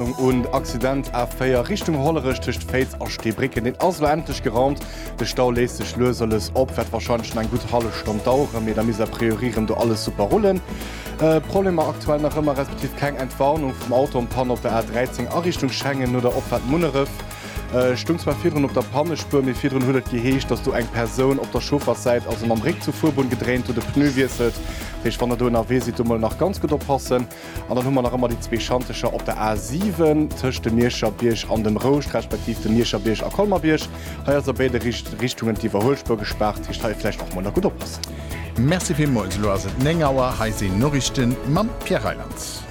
Un Accident A4 Richtung Hollerech tëscht Féiz a Steebrécken, deen ass elo endlech geraumt. De Stau léisst sech lues a lues op, wäert warscheinlech nach eng gutt hallef Stonn daueren, mee da misst a priori rëm do alles super rullen. Problemer aktuell nach ëmmer, respektiv keng Entwarnung vum Auto an Panne op der A13 a Richtung Schengen no der Opfahrt Munneref. Stoung zwar virdrun op der Pannespuer, mee virdrun huet et geheescht, dass do eng Persoun op der Chaufferssäit, also mam Réck zur Fuerbunn, gedréint huet, e Pneu wiesselt. Dat heescht, wann der do ënnerwee sidd, do mol nach ganz gutt oppassen. An dann hu mer nach ëmmer déi zwee Schantecher op der A7 tëscht dem Mierscher Bierg an dem Rouscht, respektiv dem Mierscher Bierg a Colmer-Bierg. Hei ass a béide Richtungen d'Iwwerhuelspuer gespaart, dat heescht hei vläicht och mol nach gutt oppassen. Merci villmools. Elo ass et 9 Auer, hei sinn Noriichten mam Pierre Reyland.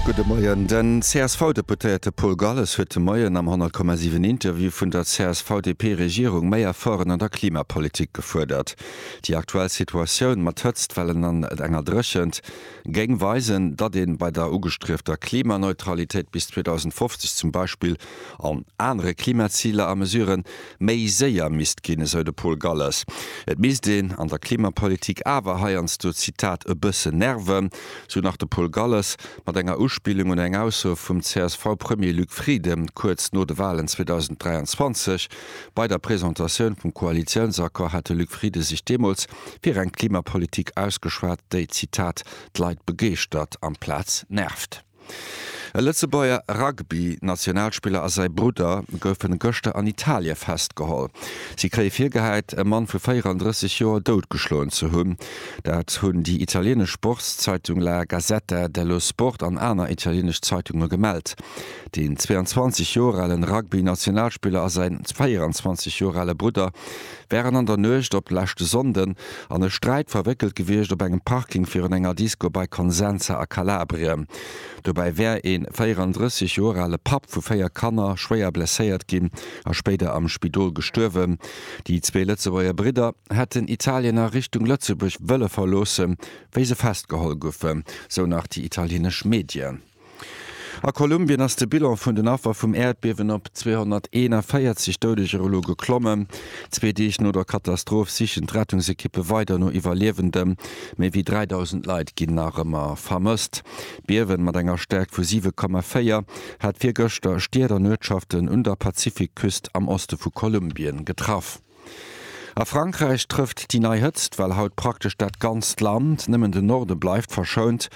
Gudde Moien. Den CSV-Deputéierte Paul Galles huet de Moien am 100,7 Interview vun der CSV-DP-Regierung méi Efforten an der Klimapolitik gefuerdert. Déi aktuell Situatioun mat Hëtztwellen an enger Dréchent géing weisen, datt ee bei der ugestriefter Klimaneutralitéit bis 2050 zum Beispill an anere Klimaziler a Mesuren méi séier misst ginn, esou de Paul Galles. Et misst een an der Klimapolitik awer heiansdo, Zitat, e bësse nerven, sou nach de Paul Galles, mat enger Uspillung un eng Ausso vum CSV-Premier Luc Frieden kuerz no de Walen 2023, Bei der Presentatioun vum Koalitiounsaccord hat de Luc Frieden sech deemools fir eng Klimapolitik ausgeschwat, déi, Zitat, d'Leit begeeschtert amplaz nervt. E Lëtzebuerger Rugby-Nationalspiller a säi Brudder goufen gëschter an Italie festgeholl. Si kréie virgehäit, e Mann vu 34 Joer doutgeschloen ze hunn. Dat hunn déi italienesch Sportszeitung La Gazzetta dello Sport an aner italienesch Zeitunge gemellt. Den 22 Joer alen Rugby-Nationalspiller a säin 24 Joer ale Brudder wären an der Nuecht op leschte Sonnden an e Sträit verwéckelt gewiescht op engem Parking virun enger Disco bei Consenza a Kalabrien. Dobäi wär ee 34 Joer ale Papp vu véier Kanner schwéier blesséiert ginn a spéider am Spidol gestuerwen. Déi zwee Lëtzebuerger Bridder hätten Italien a Richtung Lëtzebuerg wëlle verloossen, wéi se festgeholl goufen, sou nach déi italienesch Medien. A Kolumbien ass de Bilan vun den Affer vum Äerdbiewen op 241 Doudeger elo geklommen. Zwee Deeg no der Katastroph sichen d'Rettungsekippe weider no Iwwerliewendem. Méi wéi 3.000 Leit ginn nach ëmmer vermësst. D'Biewen, mat enger Stäerkt vu 7,4, hat virgëschter Stied an Uertschaften un der Pazifikküst am Oste vu Kolumbien getraff. A Frankräich trëfft déi nei Hëtzt well haut praktesch dat ganzt Land, nëmmen de Norde bleift verschount.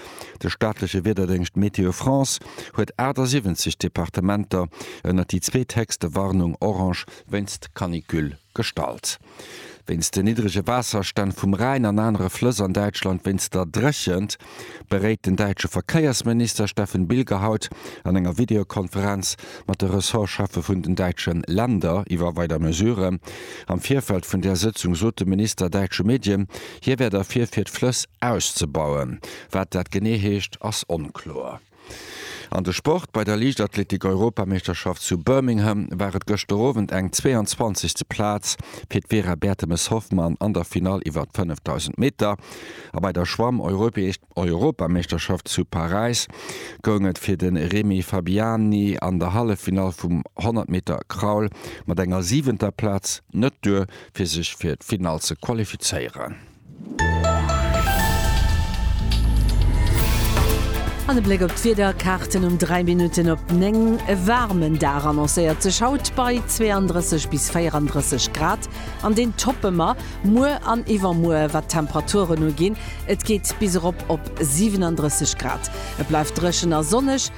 De staatleche Wiederdéngscht Météo France huet 78 Departementer ënnert déi zweethéchste Warnung orange wéinst Canicule gestallt. Wéinst den niddrege Waasserstänn vum Rhäin an anere Flëss an Däitschland wéinst der Dréchent. beréit den däitsche Verkéiersminister Steffen Bilger haut an enger Videokonferenz mat de Ressortscheffe vun den däitsche Länder iwwer weider Mesuren. Am Virfeld vun där Sëtzung sot de Minister däitsche Medien, hie wär derfir fir d'Flëss auszebauen. Wat dat genee heescht, ass onkloer. An de Sport, Bei der Liichtathletik-Europameeschterschaft zu Birmingham war et gëschter Owend eng 22. Plaz fir d'Vera Bertemes-Hoffmann an der Finall iwwer d'Fënnefdausend Meter. A bei der Schwamm-Europameeschterschaft zu Paräis goung et fir de Remy Fabiani an der Halleffinall vum 100 Meter Kraul mat enger siwenter Plaz net duer, fir sech fir d'Finall ze qualifizéieren. An e Bléck op d'Wiederkaarten um 3 Minutten op 9. E waarmen Dag annoncéiert sech haut bei 32 bis 34 Grad an deen toppe mer muer an iwwermuer wat d'Temperaturen uginn. Et geet bis erop op 37 Grad. Et bleift dréchen a sonneg.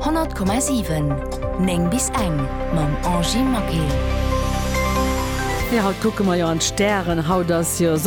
100,7 9 bis eng mam Angie Maquet. Jo haut kucke mer jo an d'Stären, haut ass jo.